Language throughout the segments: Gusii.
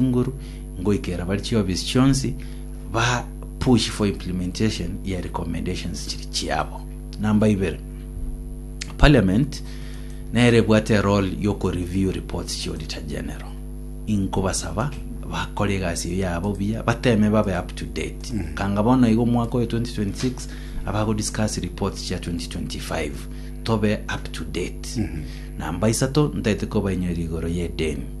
Inguru ngoikera bare chiofisi chionsi ba push for implementation ya recommendations chiri chiabo. Number ibere, Parliament nere ebwate erole yoko review reports chi Auditor General. Inkobasaba bakore egasi eye yabo buya bateme babe up to date. Mm. Kanga bono igo omwaka oyo 2026 abago discuss reports chia 2025 tobe up to date. Mm -hmm. Namba isato ntaete kobainyoria igoro ye deni.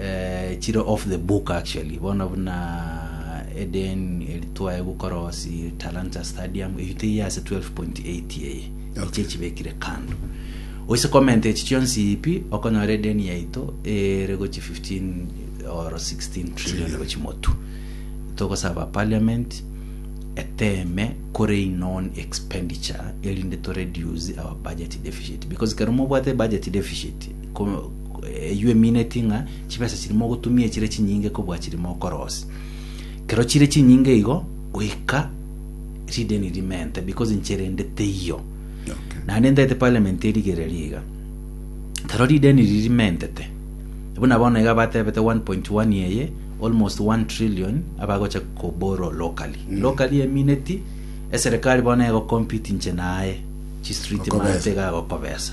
eh, chire off the book actually bono buna eden eritwae gokora osi talanta stadium eyo teiyo ase 12.8 eye eche echibekire kando oise comment echi chionsi ipi okonyora eden yaito ere gochi 15 or 16 trillion gochi motu togosaba parliament eteme kore non expenditure erinde to reduce our budget deficit because kero mobwate budget deficit ko- Eyio emineti ng'a chibesa chiri mogotumia echire chinyinge kobua chiri mokorosia. Kero chire chinyinge igo, goika rideni rimente because inche rende teiyo. Naende ntaete parliament erigereria iga. Kero rideni riri rimentete, buna bono iga batebete 1.1 eye, almost 1 trillion abagocha ko borrow locally. Locally emineti eserekari bono egocompete inche naye chistreet Okobesa. mate iga agokobesa.